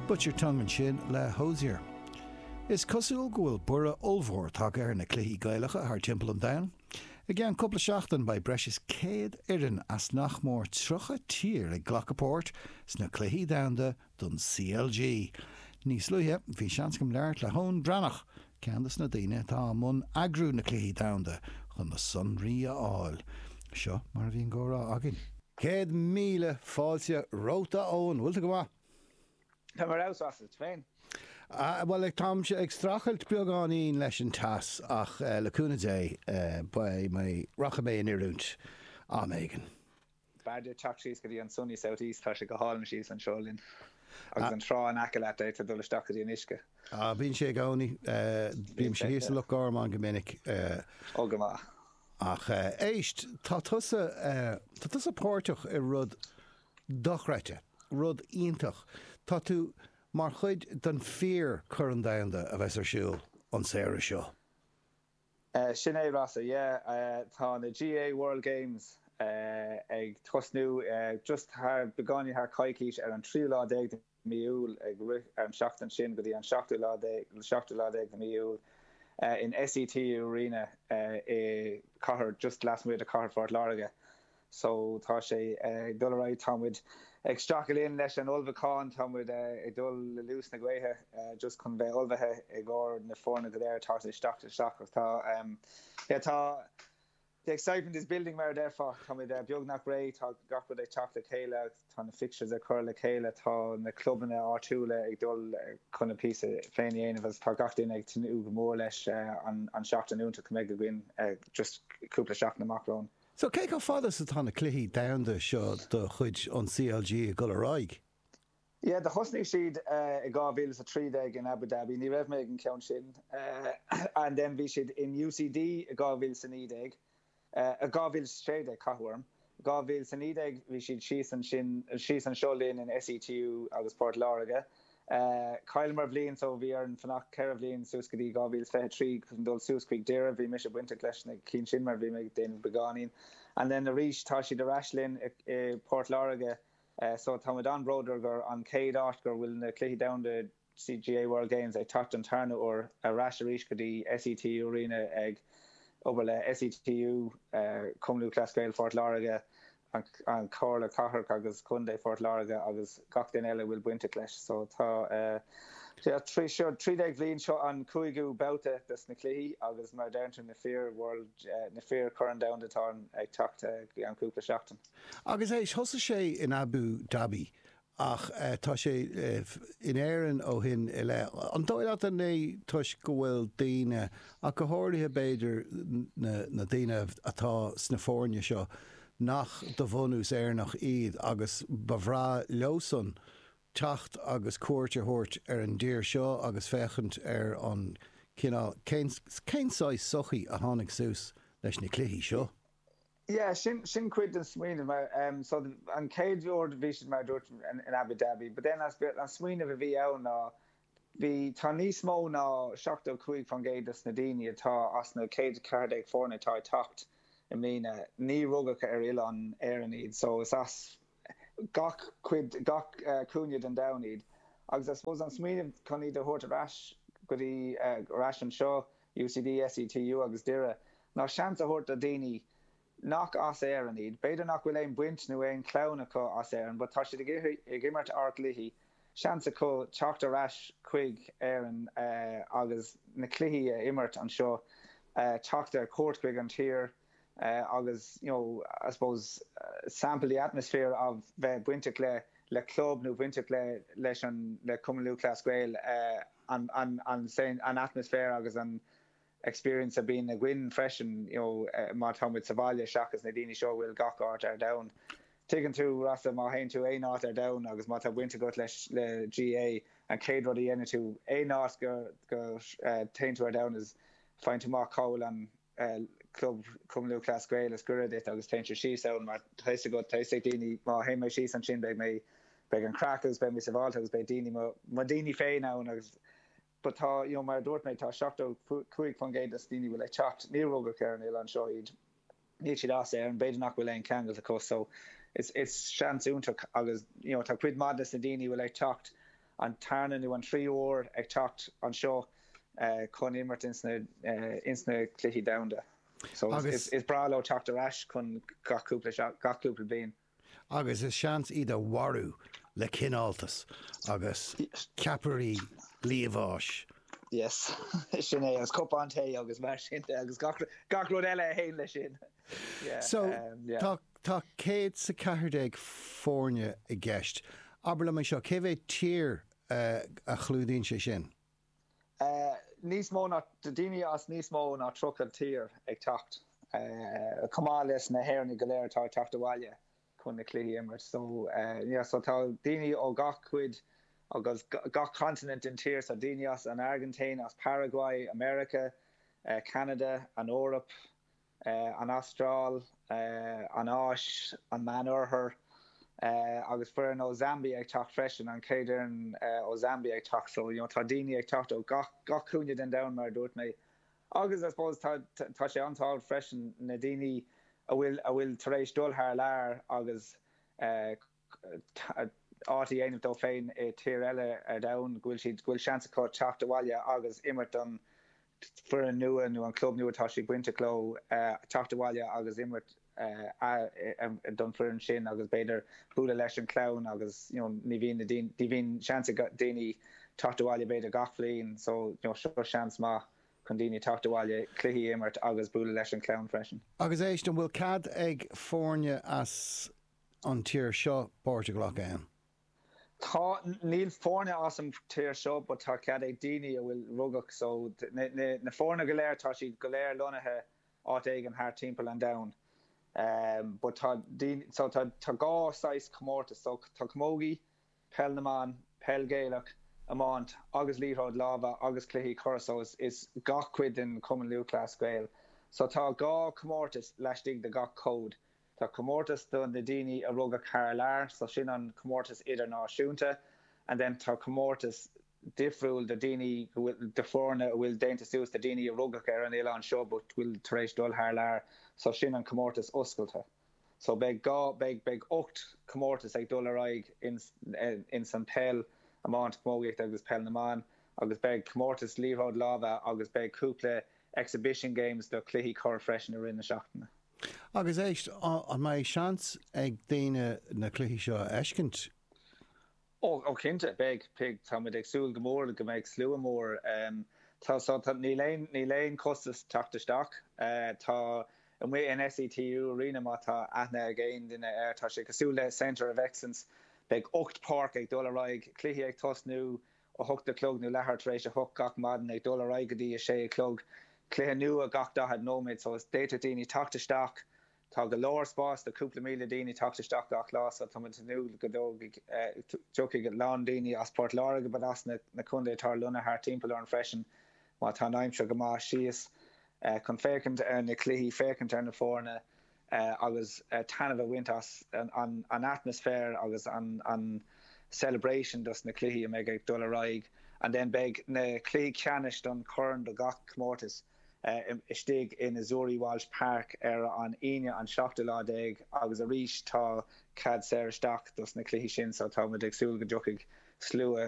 Butchered Tongue ansin le Hozier. Is cosúil go bhfuil borradh ollmhór tagtha ar na cluichí Gaelacha thart timpeall an domhain. I gceann cúpla seachtain beidh breis is 100 fhoireann as nach mór 30 tír ag glacadh páirt sna Cluichí Domhanda don CLG. Níos luaithe bhí seans agam labhairt le hEoin Breathnach Ceann de na daoine atá i mbun eagrú na Cluichí Domhanda chun na sonraí a fháil. Seo mar a bhí an comhrá againn. Céad míle fáilte romhat a Eoin. Bhfuil tú go maith? Táim ar fheabhas is tú féin? Bhuel táimse ag streachailt beagáinín leis an teas ach le cúnamh Dé rachaidh mé in oiriúint am éigin. B'fhearr duit teacht síos go dtí an sunny south east, tá sé go hálainn síos anseo linn. Agus an trá in aice leat, d'fhéadfá dul isteach go dtí an uisce. Á, bíonn sé i gcónaí. Bímse thíos i Loch Garman go minic. Ó, go maith. Ach éist, tá tusa, tá tusa páirteach i rud dochreidte, rud iontach. Tá tú mar chuid den fíor-Chorn Domhanda a bheas ar siúl an samhradh seo. Sin é, Rossa, yeah. Tá na GAA World Games ag tosnú just thar, beagáinín thar coicís, ar an tríú lá déag de mí Iúil, ag rith thar an seachtain sin go dtí an seachtú lá déag, seachtú lá déag de mí Iúil, in SETU Arena i cathair, just lasmuigh de cathair Phort Láirge. so tá sé ag dul ar aghaidh, tá muid ag streachailt linn leis an ullmhúchán, tá muid ag dul le luas na gaoithe just chun bheith ullmhaithe i gcomhair na foirne go léir atá ag teacht isteach agus tá yeah tá the excitement is building mar a déarfá, tá muid beagnach réidh, tá gach rud ag teacht le chéile agus tá na fixtures curtha le chéile, tá na clubanna áitiúla ag dul chun a bpíosa féin a dhéanamh agus tá gach duine ag tnúth go mór leis an seachtain iontach a mbeidh againn just cúpla seachtain amach romhainn. So, cé chomh fada is atá na cluichí domhanda seo de chuid an CLG ag dul ar aghaidh? Yeah, do thosnaigh siad i 2015 in Abu Dhabi, ní raibh mé ag an cheann sin, and then bhí siad in UCD i 2019, eh 2016 cathú orm, 2019 bhí siad síos ansin, síos anseo linn in SETU i bPort Láirge, Chailleamar bhliain so bhí orainn fanacht ceithre bhliain suas go dtí 2023 chun dul suas chuig Doire. Bhí mise bainteach leis na cinn sin mar bhí mé ag déanamh beagáinín. And then arís tá siad ar ais linn i bPort Láirge so tá muid an-bhródúil gur an chéad áit gur bhfuil na Cluichí Domhanda GAA World Games ag teacht don tarna uair ar ais arís go dtí SETU Arena ag obair le SETU Cumann Lúthchleas Gael Phort Láirge an Chomhairle Cathrach agus Contae Phort Láirge agus gach duine eile a bhfuil bainteach leis. So tá 13 bhliain, seo an cúigiú babhta dos na cluichí agus mar a deireann tú na fíor World, na fíor-Chorn Domhanda atá ag teacht i gceann cúpla seachtain. Agus éist thosaigh sé in Abu Dhabi ach tá sé in Éirinn ó shin i leith. An dóigh leat, an é toisc go bhfuil daoine, ach go háirithe b'fhéidir na daoine atá sna foirne seo, nach de bhunús Éireannach iad agus ba bhreá leosan teacht agus cuairt a thabhairt ar an dtír seo agus féachaint ar an cineál, cén saghas sochaí a tháinig suas leis na cluichí seo? Yeah, sin, sin cuid den smaoineamh, mar, em, so an chéad World, bhí siad, mar a dúirt mé, in, in Abu Dhabi, but then an smaoineamh a bhí ann ná, bhí, tá níos mó ná seachtó cúig faoin gcéad dos na daoine atá as na céad ceathair déag foirne atá ag teacht i mbliana, níor rugadh ar oileán Éireann iad, so is as, gach cuid, gach cúinne den domhan iad. Agus I suppose an smaoineamh chun iad a thabhairt ar ais go dtí, ar ais anseo, UCD, SETU agus Doire, ná seans a thabhairt do dhaoine nach as Éirinn iad, b'fhéidir nach bhfuil aon baint nó aon chlann acu as Éirinn but tá siad ag imirt ár gcluichí, seans acu teacht ar ais chuig Éirinn agus na cluichí a imirt anseo, teacht ar cuairt chuig an tír. agus you know I suppose sample the atmosphere of bheith bainteach le le club nó bainteach le leis an le Cumann Lúthchleas Gael an an an an atmosphere agus an experience a bhíonn againn freisin you know má tá muid sa bhaile seachas na daoine seo a bhfuil gach áit ar domhan tuigeann tú Rossa má théann tú aon áit ar domhan agus má tá baint agat leis le GAA an chéad rud a dhéanann tú aon áit go go téann tú ar domhan is faigheann tú amach cá bhfuil an Club Cumann Lúthchleas Gael is gaire duit agus téann tú síos ann mar tá fhios agat, tá fhios ag daoine má théann mé síos ansin beidh mé, beidh an craic agus beidh mé sábháilte agus beidh daoine, mo daoine féin ann agus but tá, you know, mar a dúirt mé tá seachtó cúig faoin gcéad dos daoine bhfuil ag teacht, níor rugadh ar an oileán seo iad, níl siad as Éirinn, b'fhéidir nach bhfuil aon cheangal acu so is, is seans iontach agus, you know, tá cuid maith des na daoine bhfuil ag teacht, an tarna nó an tríú uair ag teacht anseo chun imirt ins na Cluichí Domhanda so is breá leo teacht ar ais chun gach cúpla bliain. Agus is seans é iad a mharú le cineáltas agus ceapairí liamháis. Yes, sin é, agus cupán tae agus mar sin de agus gach rud eile a théann leis sin. So, tá, tá céad 's a ceathair déag foirne i gceist. Abair liom é seo, cé mhéad tír a chlúdaíonn sé sin? Níos mó ná, daoine as níos mó ná tríocha tír ag teacht, chomh maith leis na hÉireannaigh go léir atá ag teacht abhaile chun na cluichí a imirt. So, yeah, so tá daoine ó gach cuid agus gach continent den tír, so daoine as an Airgintín, as Paraguay, America, Ceanada, an Eoraip, an Astráil, an Áis, an Meánoirthear, agus foireann ó Zambia ag teacht freisin, an chéad fhoireann ó Zambia ag teacht. So, you know, tá daoine ag teacht ó gach, gach cúinne den domhan, mar a dúirt mé. Agus, I suppose, tá, tá sé an-tábhacht freisin, na daoine a bhfuil, a bhfuil tar éis dul thar lear agus eh. áit a dhéanamh dó féin i tír eile ar domhan, go bhfuil siad, go bhfuil seans acu teacht abhaile agus imirt don foireann nua nó an club nua atá siad bainteach leo, teacht abhaile agus imirt don foireann sin agus b'fhéidir bualadh leis an chlann agus you know ní bhíonn na daoine, ní bhíonn seans ag daoine teacht abhaile b'fhéidir gach bhliain so you know seo seans maith chun daoine teacht abhaile, cluichí a imirt agus bualadh leis an chlann freisin. Agus éist, an bhfuil cead ag foirne as. an tír seo páirt a ghlacadh ann. Tá, níl foirne as an tír seo but tá cead ag daoine a bhfuil rugadh so na foirne go léir tá siad go léir lonnaithe áit éigin thart timpeall an domhain but tá daoine so tá dhá saghas comórtas so tá camogie, peil na mban, peil Ghaelach, iomáint agus liathróid láimhe agus cluichí corr so is gach cuid den Chumann Lúthchleas Gael so tá dhá comórtas laistigh de gach cód. Tá comórtas do na daoine a rugadh thar lear, so sin an comórtas idirnáisiúnta, and then tá comórtas difriúil do daoine go bhfuil, do foirne a bhfuil déanta suas de daoine a rugadh ar an oileán seo but bhfuil tar éis dul thar lear, so sin an comórtas oscailte. So beidh dhá, beidh, beidh ocht comórtas ag dul ar aghaidh ins, ins an peil, iomáint, camógaíocht agus peil na mban agus beidh comórtas liathróid láimhe agus beidh cúpla exhibition games do cluichí corr freisin i rith na seachtaine. Agus éist, an mbeidh seans ag daoine na cluichí seo a fheiscint? Ó, cinnte, beidh, beidh. Tá muid ag súil go mór go mbeidh slua mór. Tá, so, tá, níl aon, níl aon chostas teacht isteach. Tá, amuigh in SETU Arena, má tá aithne ag aon duine air, tá sé cosúil le Centre of Excellence, beidh ocht páirc ag dul ar aghaidh, cluichí ag tosnú, a hocht a chlog nó leathuair tar éis a hocht gach maidin, ag dul ar aghaidh go dtí a sé a chlog, cluiche nua gach daichead nóiméad, so is, d'fhéadfadh daoine teacht isteach, tá go leor spáis do chúpla míle daoine teacht isteach gach lá, so tá muid ag tnúth go dtógfaidh, dtiocfaidh a lán daoine as Port Láirge but as na, na contae atá ar lonnaithe thart timpeall orainn freisin má tá an aimsir go maith síos chun féachaint ar na cluichí, féachaint ar na foirne. agus taitneamh a bhaint as an atmaisféar agus an celebration dos na cluichí a mbeidh ag dul ar aghaidh and then beidh na cluichí ceannais don chorn do gach comórtas istigh in Azzurri Walsh Park ar an Aoine an seachtú lá déag agus arís tá cead saor isteach dos na cluichí sin so tá muid ag súil go dtiocfaidh slua